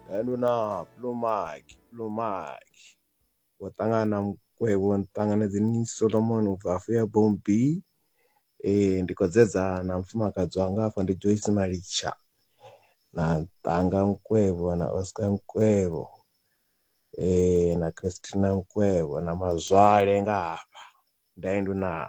Hello na Blue Mark, Blue Mark. Wo ṱangana na Mukwevho ni ṱanganedze ni Solomon u bva afho ya Bombi. Eh ndi khou dzedza na mufumakadzi wanga afha ndi Joyce Malitsha. Na Ṱanga Mukwevho na Oscar Mukwevho. Eh na Christina Mukwevho na Mazwale nga hafha. Nda indu naa.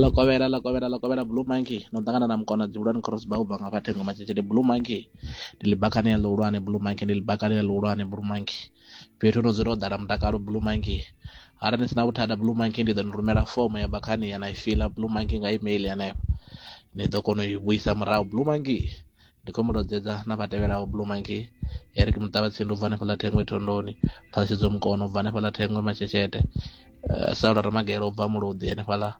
ḽo kovhela ḽo kovhela ḽo kovhela blue monkey no ṱangana na mukona dzivhulwane crossba ubva nga vhathengo matshitshili blue monkey ndi ḽibakani ya ḽihulwane blue monkey ndi ḽibakani ya ḽihulwane blue monkey fhethu no dzula ho ḓala mutakalo blue monkey arali ni sina vhuthada blue monkey ndi ḓo ni rumela fomo ya bakhani ya na i fiḽa blue monkey nga email hanefho ni ḓo kona u i vhuisa murahu blue monkey Ndi khou mu lozedza na vha tevhelaho, Blue Monkey, Eric Muṱavhatsindi u bva hanefhaḽa Thengwe Thondoni, Phalshedzo Mukono u bva hanefhaḽa Thengwe Masheshete, uh, Saulo Ramagelo u bva Muluḓi hanefhaḽa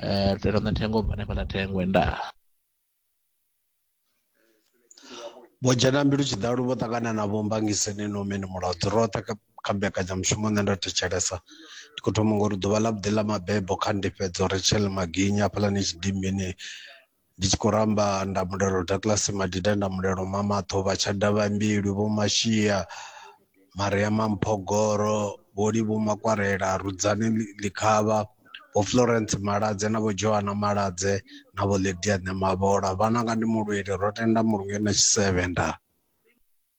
uh, Lutendo Thengwe u bva hanefhaḽa Thengwe ndaa. Vho dzhena mbilu tshiḓalu vho ṱangana na vho mbangiseni no mini mulodzo roṱhe kha mbekanyamushumo nṋe ndo thetshelesa ndi khou thoma ngori ḓuvha ḽa vhuḓi ḽa mabebo kha ndifhedzo Rachel Maginya hafhaḽani tshidimbini ndi tshi khou ramba nda mulelo Douglas Madida nda mulelo Mamaṱho vha tsha davha mbilu vho Mashia Mariama Mphogoro vho Livhu Makwarela Rudzani Ḽikhavha vho Florence Maladze na vho Joana Maladze na vho Lydia Ṋemavhola vhananga ndi mulweli ro tenda mulunge na tshisevhe nda